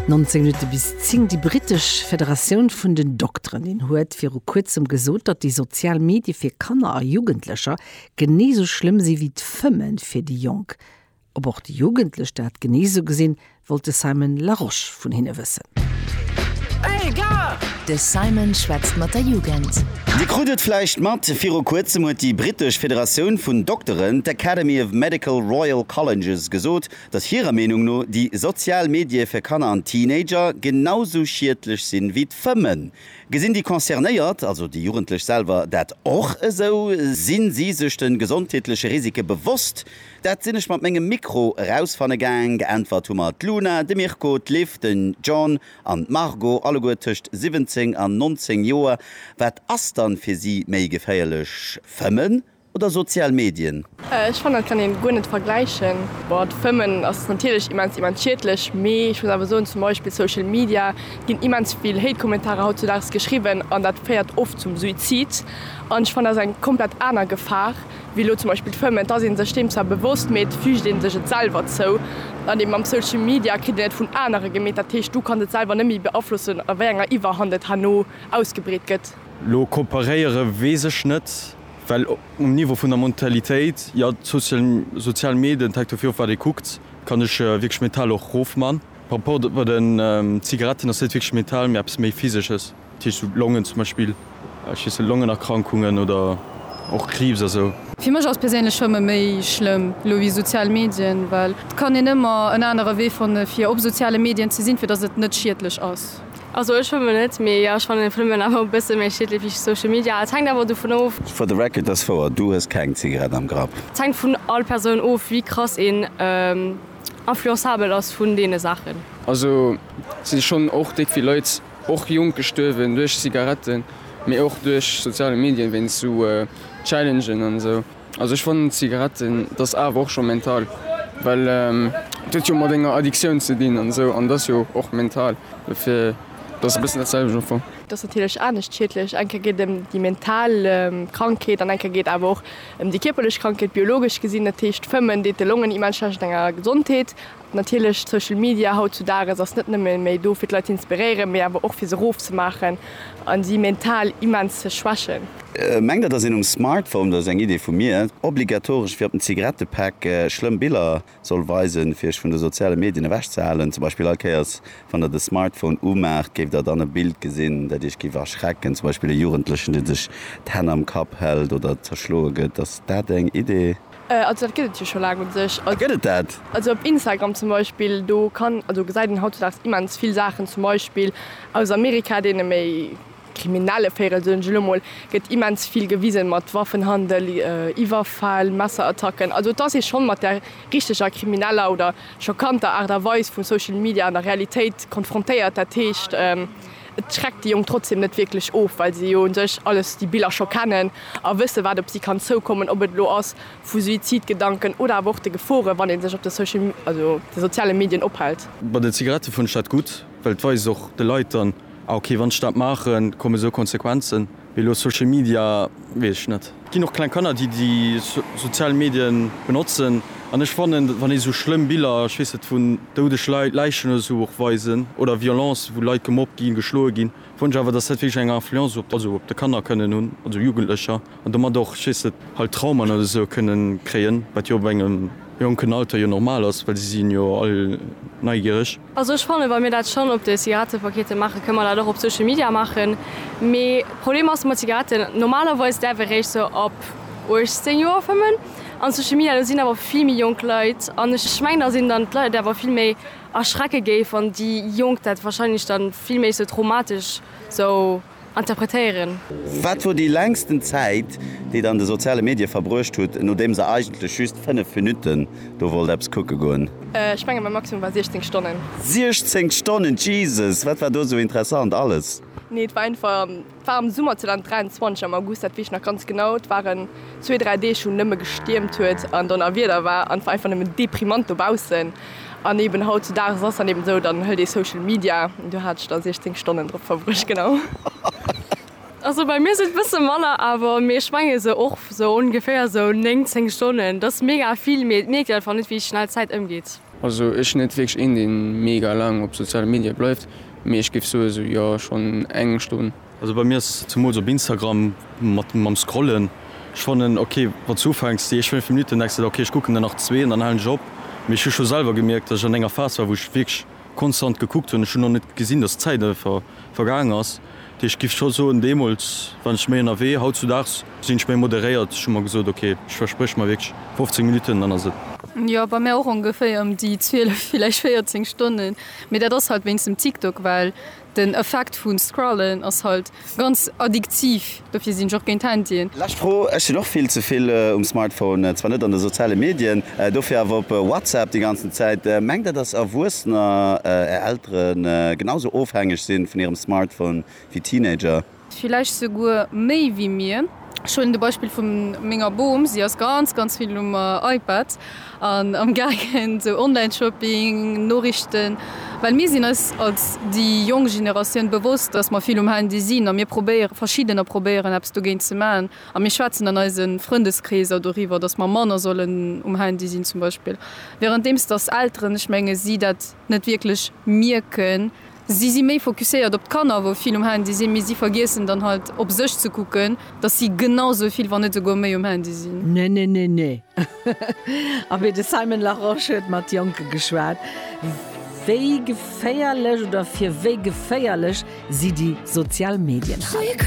19 Minutte bis 10, Déi britesch Federatioun vun den Dokterinnen huet viru Kuerzem gesot, datt déi sozial Medie fir Kanner a Jugendlecher genee esou schlëmm si wéi d'Fëmme fir déi Jonk. Ob och déi Jugendlech dat genee esou gesinn, wollt de Simon Larosche vun hinne wëssen. De Simon schwätzt mat der Jugend. Dir krut et vläicht mat, Viru Kuerzem huet déi britesch Federatioun vun Dokteren, d'Academy of Medical Royal Colleges, gesot, dass hirer Meenung no déi sozial Medie fir Kanner an Teenager genau sou schiedlech sinn ewéi d'Fëmmen. Gesinn déi Concernéiert, also déi Jugendlech selwer, dat och esou? Sinn si sech de gesondheetleche Risike bewosst? Dat sinn ech mat mengem Mikro erausfanne gaang. Geäntwert hu mer d'Luna, de Mirko, d'Liv, den John an d'Margot, alleguer tëscht 17 an 19 Joer. Wat ass dann fir si méi geféierlech, Fëmmen Oder sozial Medien? Ech fannen dat kann een guer net vergläichen. Boah d'Fëmmen ass natierlech immens immens schiedlech, mee ech muss awer soen zum Beispill Social Media ginn immens vill Hate Kommentarer haut zu Daags geschriwwen an dat féiert oft zum Suizid an ech fannen dat ass eng komplett aner Gefahr wéi elo zum Beispill d'Fëmmen. Et ass een sech deem zwar bewosst, mee et füügt een sech et selwer zou an eben mam Social Media kritt een et vun anere gemeet, dat heescht du kanns et selwer net méi beaflossen a wéi enger Iwwerhand et herno ausgebreet gëtt. Lo kooperéiere weess ech net. Well um Niveau vun der Mentalitéit, jo, d'sozial Medien, et hänkt dofir of wat ee kuckt, kann ech wierklech mental och rofman. Par rapport bei den Zigaretten ass net wierklech mental, mee eppes méi physesches, dat heescht sou Longen zum Beispill, ech weess net, Longenerkrankungen oder och Kriibs a sou. Fir mech ass perséinlech Fëmme méi schlëmm elo wéi sozial Medien, well et kann een ëmmer en anere Wee fanne fir op soziale Medien ze sinn, fir datt et net schiedlech ass. Also ech schwëmmen net, mee jo ech fannen Fëmmen awer e bësse méi schiedlech wéi Social Media. Et hänkt awer dovun of. For the record, dass wouer, du hues keng Zigarett am Grapp. Et hänkt vun all Persoun of wéi krass een influençabel ass vun deene Saachen. Also et si schonn och déck vill Leit, och jonk, gestuerwen duerch Zigaretten, mee och duerch soziale Medien, wéinst sou Challengen an esou. Also ech fannen Zigaretten dat ass awer och scho mental, well et huet jo mat enger Addiktioun ze dinn an esou an et ass jo och mental, dofir dat ass e bëssen dat selwecht am Fong. Et ass natierlech anescht schiedlech, eng Kéier geet et ëm déi mental Krankheet an eng Kéier geet et awer och ëm déi kierperlech Krankheet, biologesch gesinn. Dat heescht, Fëmmen deet de Longen immens schlecht an enger Gesondheet. Natierlech, Social Media haut zu Dages ass net nëmme méi do fir d'Leit ze inspiréieren, mee awer och fir se rof ze maachen a si mental immens ze schwächen. Mengt der dass een um Smartphone, dat ass eng Idee vu mir, obligatoresch wéi op den Zigarettepäck schlëmm Biller soll weisen fir iech vun de soziale Medien ewech ze halen? Zum Beispill all Kéiers wann der de Smartphone umaacht géift der dann e Bild gesinn dat iech géif erschrecken, zum Beispill e Jugendlechen dee sech d'Hänn am Kapp hält oder zerschloe gëtt. Ass dat eng Idee? Also dat gëtt et jo scho laang un sech. Ah gëtt et dat? Also op Instagram zum Beispill, do kann, also gesäit een hautzedags immens vill Saachen, zum Beispill aus Amerika, deene méi kriminelle Véirel soen ech elo mol, gëtt immens vill gewisen mat Waffenhandel, Iwwerfäll, Messerattacken. Also et ass ee schonn mat der richteger krimineller oder schockanter Aart a Weis vu Social Media an der Realitéit konfrontéiert. Dat heescht. Et schreckt déi Jonk trotzdeem net wierklech of, well se jo u sech alles, déi Biller scho kennen a wësse wat op si kann zoukommen, ob et elo ass vu Suizidgedanken oder awer och de Geforen, wann ee sech op de Social, also de soziale Medien ophält. Bei den Zigarette fënnt ech dat gutt, well et weist och de Leit dann, ah okay, wann ech dat maachen, kommen esou Konsequenzen. Mee elo Social Media weess ech net. Et ginn och kleng Kanner déi déi sozial Medien benotzen an ech fannen wann ee sou schlëmm Biller, ech weess net, vun doudeg Leit, Läichen oder sou och weisen oder Violence wou Leit gemobbt ginn, geschloe ginn, fannen ech awer dass dat wierklech eng Influence op, also op de Kanner kënnen hunn, also Jugendlecher an domat och, ech weess net, halt Traumen oder sou kënnen kréien, wat jo op engem jonken Alter jo normal ass, well si sinn jo all neigiereg. Also ech fannen, wa mir dat schonn op de Zigarettepakete maachen, kënne mer dat och op Social Media maachen. Mee Problem ass mat Zigaretten, normalerweis däerf ee réischt sou ab 18 Joer fëmmen. An Social Media, do sinn awer vill méi jonk Leit. An ech mengen, datt een dann d'Leit awer vill méi erschrecke géif, wann déi Jonk dat wahrscheinlech dann vill méi sou traumatesch sou. interpretéieren. Wat wor déi längsten Zäit, déi der an de soziale Medie verbruecht hutt, nodeems der eigentlech just 5 Minutten do wollt eppes kucke goen? Ech mengen mäi Maximum war 16 Stonnen. 16 Stonnen, Jesus! Wat war do sou interessant alles? Nee, et war einfach, et war am Summer 2023 am August, dat weess ech nach ganz genau. Et waren zwee, dräi Deeg wou nëmme gestiermt huet an Donnerwieder war an et war einfach nëmmen deprimant dobaussen. An eben hautzudages ass dann eben esou, dann hëlt ee Social Media, do hat ech da 16 Stonnen drop verbruecht, genau. Also bei mir sinn et bësse manner awer, mee ech menge sou och sou ongeféier sou 9, 10 Stonnen. Dat ass mega vill, mee et mierkt een einfach net, wéi schnell d'Zäit ëmgeet. Also ech sinn net wierklech een, dee mega laang op soziale Medie bleift, mee ech géif soe sou, jo, schonn eng Stonn. Also bei mir ass zemools op Instagram mat mam scrollen, ech fannen ok wann s du ufänks déi éischt 5 Minuten denks de der ok ech kucken der nach zwee an dann halen ech op, mee ech hu scho selwer gemierkt dass ech an enger Phas war wou ech wierklech konstant gekuckt hunn, ech hunn och net gesinn dass d'Zäit einfach vergaangen ass, dee ech giff scho soen deemools waren ech méi ënnerwee, hautzudaags sinn ech méi moderéiert, ech hu mer gesot ok ech verspréch mer wierklech 15 Minuten an dann ass et. Jo bei mär och ongeféier ëm déi 12 villäicht 14 Stonnen, mee dat ass halt wéinst dem TikTok well. Den Effekt vun Scrollen ass halt ganz addiktiv, dofir sinn ech och géint Handyen. Lescht Fro, Ech sinn och vill ze vill um Smartphone, zwar net an de soziale Medien, dofir awer op WhatsApp déi ganzen Zäit. Mengt der dass Erwuessener, är Elteren, genau sou ofhängeg sinn vun hirem Smartphone wéi Teenager? Villäicht souguer méi wéi mir. Ech huelen de Beispill vu menger Bom. Si ass ganz, ganz vill um iPad an amgaangen, sou Online-Shopping, Noriichten. Well mir sinn eis als déi jonk Generatioun bewosst, dass mer vill um Handy sinn a mir probéieren, verschiddener probéieren eppes dogéint ze maachen. A mir schwätzen an eise Frëndeskreeser doriwwer, dass mer manner sollen um Handy sinn zum Beispill. Währenddeems dass Elteren, ech menge si dat net wierklech mierken. Si si méi focuséiert op d'Kanner, wou vill um Handy sinn, mee si vergiessen dann halt op sech ze kucken, dass si genau sou vill, wann net souguer méi um Handy sinn. Nenenene. A wéi de Simon Larosche huet mat Jonke geschwat, wéi geféierlech oder fir wéi geféierlech si déi sozial Medien halen.